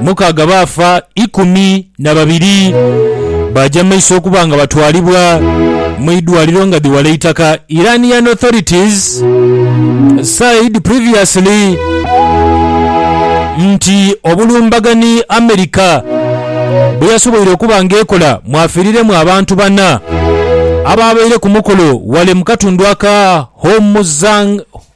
Mukaaga baafa, ikumi na babiri baaja mu maiso okuba nga batwalibwa mu idwaliro nga dhi wala eitaka. Iranian authorities said previously nti obulumbaganhi America bweyasoboire okuba nga ekola mwafiiriremu abantu bana abaabaire ku mukolo wale mu katundu aka Hormuzang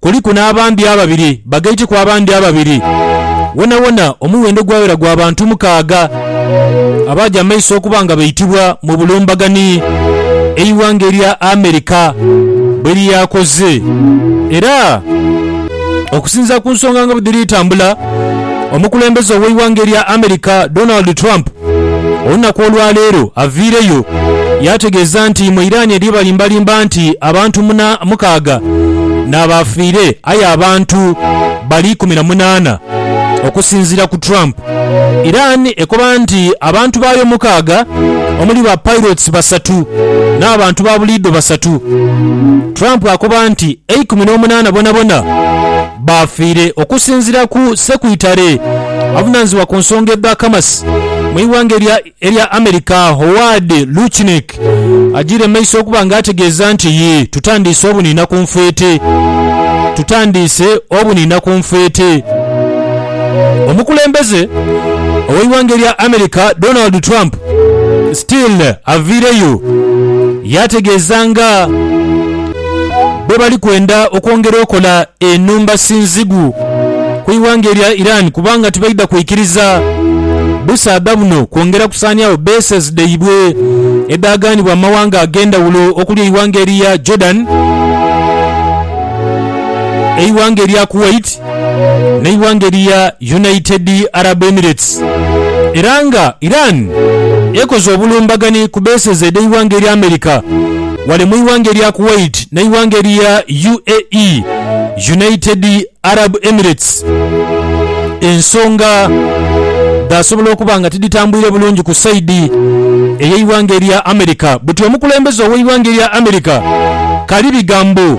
Kuliku n'abambi ababiri bagaiteku abandi ababiri. Wonawona omuwendo gwaghera gwa bantu mukaaga abaaja mu maiso okuba nga baitibwa mu bulumbaganhi, eighanga erya America bwe lyakoze. Era okusinziira ku nsonga nga bwe dhiri tambula, Omukulembeze ow'eighanga erya America Donald Trump olunaku olwaleero aviireyo yaategeeza nti mu Iran eriyo balimbalimba nti abantu muna mukaaga n'abaafiire aye abantu bali ikumi na munaana. Okusinziira ku Trump, Iran ekoba nti abantu baayo mukaaga omuli ba pilots basatu n'abantu ba buliidho basatu. Trump akoba nti eikumi n'omunaana bonabona. Baafiire okusinzira ku Ssekwitale avunanizibwa ku nsonga edha Kamasi mu ighanga erya erya America Howard Lutnick agiire mumaiso okuba nga ategeeza nti yii tutandiise obuniina ku nfeete tutandiise obuniina ku nfeete Omukulembeze oweighanga erya America Donald Trump still aviireyo yaategeeza nga bwe bali kwenda okwongera okola enhumba sinzigu ku ighanga erya Iran kubanga tibaidha kwikiriza busaadha buno kwongera kusaaniagho bases dhaibwe edhaaganibwa mu mawanga ag'endhawulo okuli eighanga erya Jordan, eighanga erya Kuwait, n'eighanga erya United Arab Emirates era nga Iran ekoze obulumbagani ku bases edh'eighanga erya America ghale mu ighanga erya Kuwait n'eighanga erya UAE, United Arab Emirates, ensonga dhaasobola okuba nga tidhitambwire bulungi ku saidi ey'eighanga erya America. Buti omukulembeze ow'eighanga erya America Karibigambo.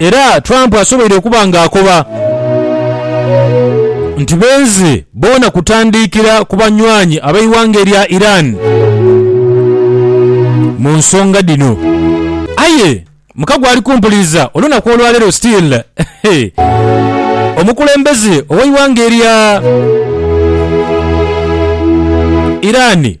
Era Trump asoboire okuba nga akoba nti benze boona kutandiikira ku banywanyi ab'eighanga erya Iran mu nsonga dhino. Aye mukago ali kumpuliriza olunaku olwaleero still omukulembeze ow'eighanga erya Iran.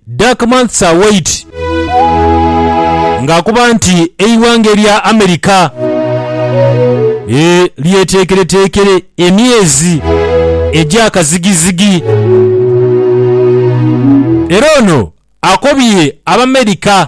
Dark Months Are White ng'akoba nti eighanga erya America lyeteekereteekere emyezi egya kazigizigi era ono akobye Abamerica.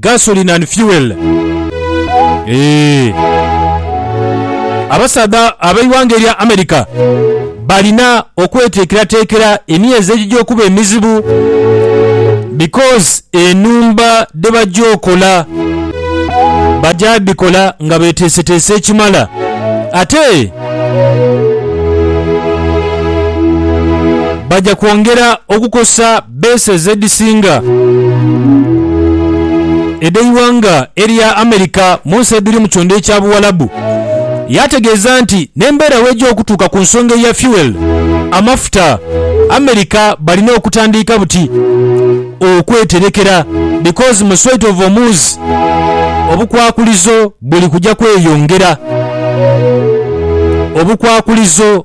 gasoline and fuel eeh. Abasaadha ab'eighanga erya America balina okweteekerateekera emyezi egija okuba emizibu because enhumba dhebaja okola baja dhikola nga beteeseteese ekimala ate baja kwongera okukosa Beese z'edhisinga edh'eighanga erya America mu nsi edhiri mu kyondha ekya Buwalabu. Yaategeeza nti n'embeera bw'eja okutuuka ku nsonga eya fuel, amafuta, America balina okutandiika buti okweterekera because mu Strait of Hormuz obukwakulizo buli kuja kweyongera. Obukwakulizo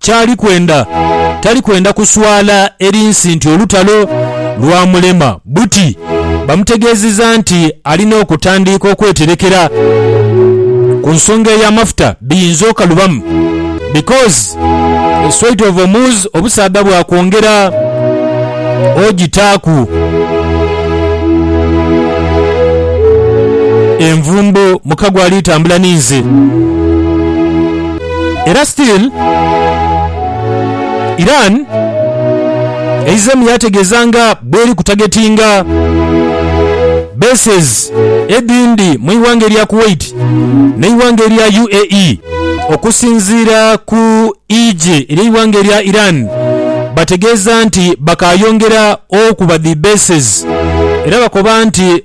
Ky'ali kwenda, tali kwenda kuswala eri nsi nti olutalo lwamulema. Buti bamutegeezizza nti alina okutandiika okweterekera ku nsonga ey'amafuta biyinza okalubamu because the Strait of Hormuz obusaadha bwakwongera ogitaaku envumbo muka gw'alitambula ni nze. Era still Iran eizeemu yaategeeza nga bweri ku targetinga bases edhindi mu ighanga erya Kuwait n'eighanga erya UAE. Okusinziira ku eigye ery'eighanga erya Iran, bategeeza nti bakaayongera okuba dhi bases era bakoba nti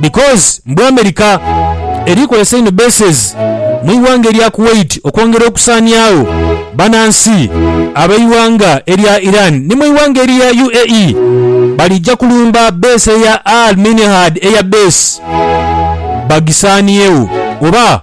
because mbu America eri kozesa inho bases mu ighanga erya Kuwait okwongera okusaaniagho banansi abeighanga erya Iran ni mu ighanga erya UAE balija kulumba base ya Al Minhad Air Base bagisaaniegho oba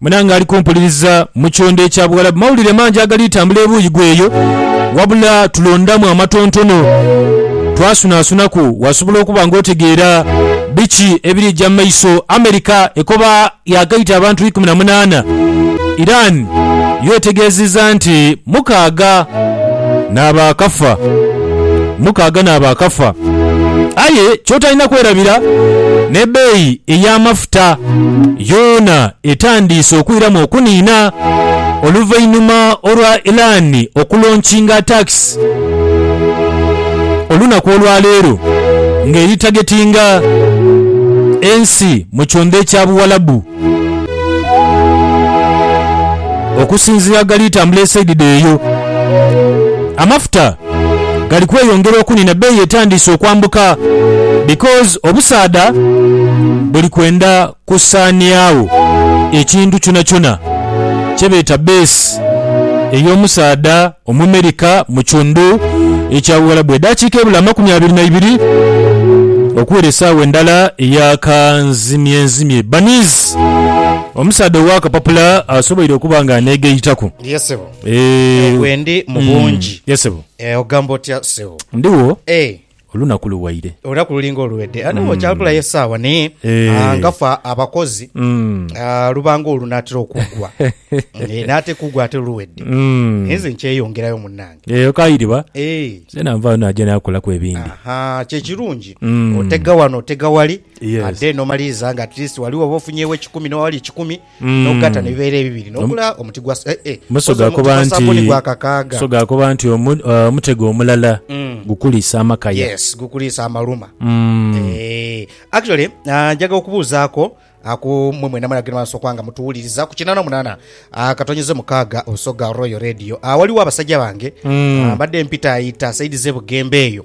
Munange ali kumpuliriza mu kyondo ekya Buwalabu mawulire mangi agali tambula ebuuyi gweyo wabula tulondamu amatontono twasunasunaku wasobola okuba nga otegeera biki ebirija mu maiso. America ekoba yaagaita abantu ikumi na munaana, Iran yo etegeezezza nti mukaaga n'abaakafa. mukaaga n'abaakafa. Aye ky'otalina kwerabira, n'ebbeeyi ey'amafuta yoona etandiise okwiramu okuniina oluvainhuma olwa Iran okulonkinga taakisi olunaku olwaleero ng'eri tagetinga ensi mu kyondha ekya Buwalabu. Okusinziira ghali tambula esaidi dheeyo, amafuta gali kweyongera okunina beeyi etandiise okwambuka because obusaadha buli kwenda kusaaniagho ekintu kyonakyona kyebeeta base ey'omusaadha. Omumerika mu kiundhu ekya Buwalabu. Edaakiika ebula amakumi abiri na ibiri okuwera esaawa endala eya kanzimyenzimye. Bunnies, omusaadha ow'akapapula asoboire okuba nga aneegayitaku. Ye sebo. Eeh. Eyo gwendi mu bungi. Ye sebo. Eeh ogamba otya sebo. Ndhigho. Eeh. Olunaku luwaire. Olunaku luli ng'oluwedde. Nawe okyakulayo esaawa naye Eeh. nga ffe abakozi Mm. ah, luba ng'olunaatera okuggwa. Eh, n'ate kuggwa ate luwedde. Mm. Naye nze nkyeyongerayo munnange. Eyo kairiba. Eh. Nzena nvaayo naja nakolaku ebindi. Ahaa, kye kirungi. Mm. Otega wano, otega wali. Yes. Ate n'omaliriza nga at least wali woba ofunyeewo ekikumi n'oba wali ekikumi. Mm. n'okugatta ne bibeera ebibiri n'ogula omuti gwa sa- eh, eh, Muso okoze omuti gaakoba gwa nti sabbuni gwa kakaaga. so gaakoba nti omu- eh, omutego omulala Mm. gukulisa amakaya. yes gukuliisa amaluma Mm. Eh, actually ah, njaga okubuuzaako ah, ku mwe mwena mwena genda soka nga mutuwuliriza ku kinana munana ah, katonyeze mukaaga osoga royal radio Ah, waliwo abasajja bange Mm. ah, mbadde mpitaayita saidi ze bugembe eyo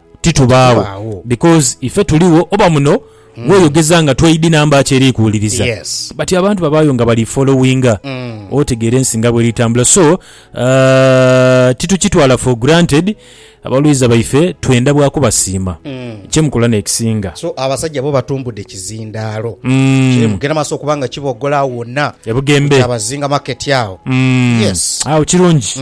titubaagho because ife tuligho oba muno weyogeza nga tweidi number ki eri kuwuliriza but abantu babaayo nga bali followinga otegeera ensi nga bweri tambula so titukitwala for granted abalwiza baife twenda bwa kubasiima kyemukola nekisinga. So abasajja bo batumbudde kizindaalo kiri mugenda maaso okuba nga kiboggola agho wonna ku Kyabazinga market agho. Yes. Agho kirungi.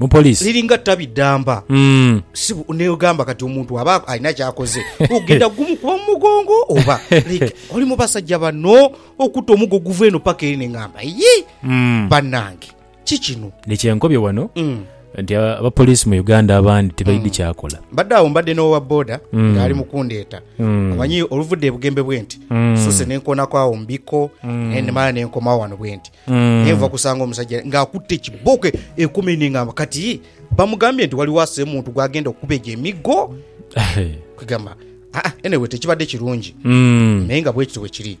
Mu poliisi. Liringa ttabi ddamba. Si bu, n'ogamba kati omuntu aba alina ky'akoze, ogenda kugumukuba mu mugongo oba? Like, oli mu basajja bano okuta omugo oguva eno paka ere ne ngamba, Yi! Bannange! Ki kino? Ni kye nkobye wano, nti a- abapoliisi mu Uganda abandi tibaidhi kyakola. Mbadde awo mbadde n'owa boda ng'ali mu kundeeta. Omanyi, oluvudde e Bugembe bwenti, nsuuse ne nkoonako awo mu bikko, ne ndimala ne nkomawo wano bwenti. Naye nva kusanga omusajja ng'akutte ekibooko e- ekumi ni ngamba kati bamugambye nti waliwo ase muntu gw'agenda okukuba egyo emiggo kwegamba aa anyway tekibadde kirungi Mm. naye nga bwekityo bwe kiri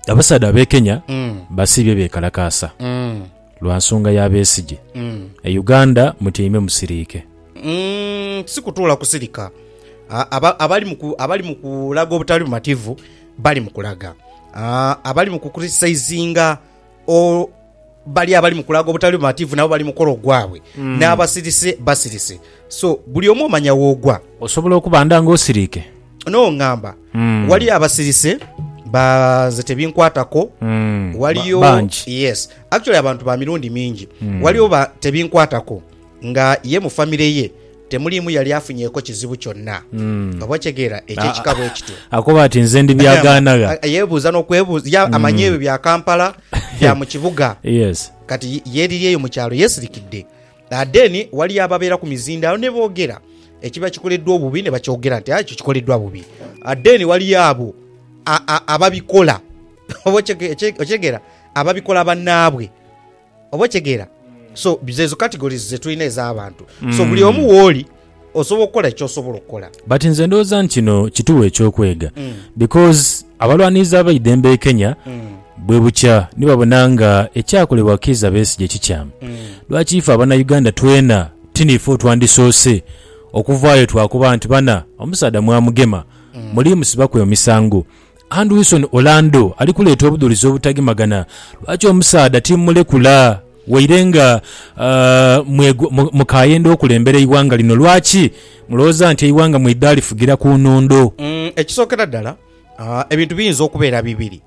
abasaadha abekenya Mm, basiibye bekalakaasa mm, lwa nsonga ya besigye mm. e uganda mutyaime musiriike Mm, si kutuula kusirika A- aba- abali mu ku- abali mu kulaga obutali bumativu Bali mu kulaga abali mu kukuritisizinga o, bali abali mu kulaga obutali bumativu nabo bali mu kukola ogwabwe, n'abasirise basirise. So, buli omu omanya w'ogwa. Osobola okuba nda nga osiriike? N'ongamba, Waliyo abasirise, ba, nze tebinkwatako. Waliyo, Bangi. yes. Actually abantu ba mirundi mingi. Waliyo ba, tebinkwatako. nga ye mu famire ye temuliimu yali afunyeeko kizibu kyonna. Oba okitegeera eky'ekika bwe kityo. Akoba ati nze ndi byagaanagha. A- Yeebuuza n'okwebuuza, ya- amanya ebyo bya Kampala, bya mu kibuga. Yes. Kati ye- yeeriri eyo mu kyalo yeesirikidde. Ah, Then waliyo ababeera ku mizindaalo ne boogera ekiba kikoleddwa obubi ne bakyogera nti "Ah, ekyo kikoleddwa bubi. Ah, Then waliyo abo a- a- ababikola oba okitege- okitegeera ababikola bannaabwe Oba okitegeera? So zeezo categories ze tulina ez'abantu. So buli omu wooli osobola okukola ky'osobola okukola. But nze ndowooza nti kino kituwa eky'okwega because abalwanirizi ab'eidembe e Kenya bwe bukya ni babona nga ekyakolebwa Kiiza Besigye kikyamu. Lwaki ife Abanauganda twena ti niife otwandisoose okuvaayo twakoba nti bana omusaadha mwamugema, muliimusibaku emisango? And Wilson Orlando ali kuleeta obudhulizi obutagemagana lwaki omusaadha timumulekula waire nga mukayenda okulembera eighanga lino. Lwaki mulowooza nti eighanga mweidha lifugira ku nhondo? Ekisookera ddala, ebintu biyinza okubeera bibiri.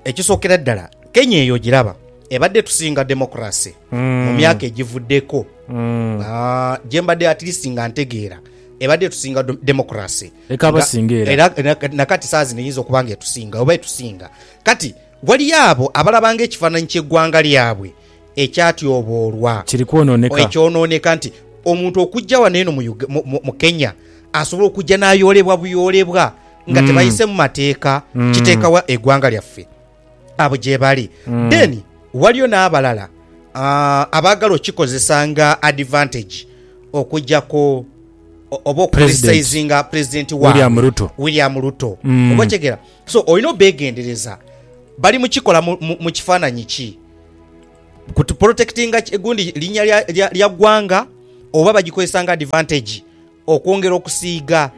Ekisookera ddala, Kenya eyo ogiraba ebadde etusinga demokulase mu myaka egivuddeko. Gye mbadde at least nga ntegeera ebadde etusinga do- demokulase. Leka Nga- abasinga era. era- era- na kati saa zino eyinza okuba nga etusinga oba etusinga kati waliyo abo abalabanga ekifaananyi ky'eggwanga lyabwe ekyatyoboolwa Kiri kwonooneka. ekyonooneka nti omuntu okujja wano eno mu Uga- mu- mu- mu Kenya asobola okujja n'ayoolebwa buyoolebwa nga Mm. tebayise mu mateeka Mm. kiteeka wa egwanga lyaffe abo gyebali Mm. then waliyo n'abalala ah, abaagala okikozesa nga advantage okujjako o- oba okucriticizinga pulezidenti waabwe William Ruto. william ruto Mm. oba okitegera so olina obegendereza bali mukikola mu- mu mu kifaananyi ki Ku tuprotekitinga ki gundi linya lya gwanga oba bagikozesa nga advantage okwongera okusiiga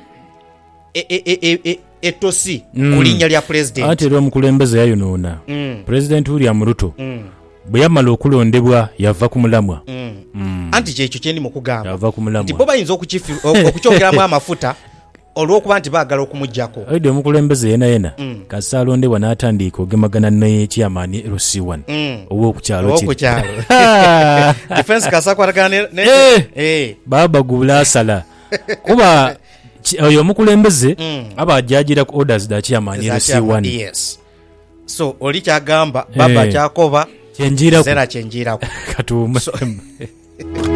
etosi ku linya lya pulezidenti. Anti era omukulembeze yayonoona. Pulezidenti William Ruto bwe yamala okulondebwa yava ku mulamwa. Anti kyekyo kye ndi mu kugamba nti bo bayinza okukyongeramu amafuta Olw'okuba nti baagala okumujaku. Aidha omukulembeze yenayena kasita alondebwa n'atandiika ogemagana ni Chairman LC one ow'oku kyalo kiri. Eeh! Baaba guula asala kuba oyo omukulembeze aba ajaajiira ku orders dha Chairman LC one. Kye njiiraku. Katuwumemu.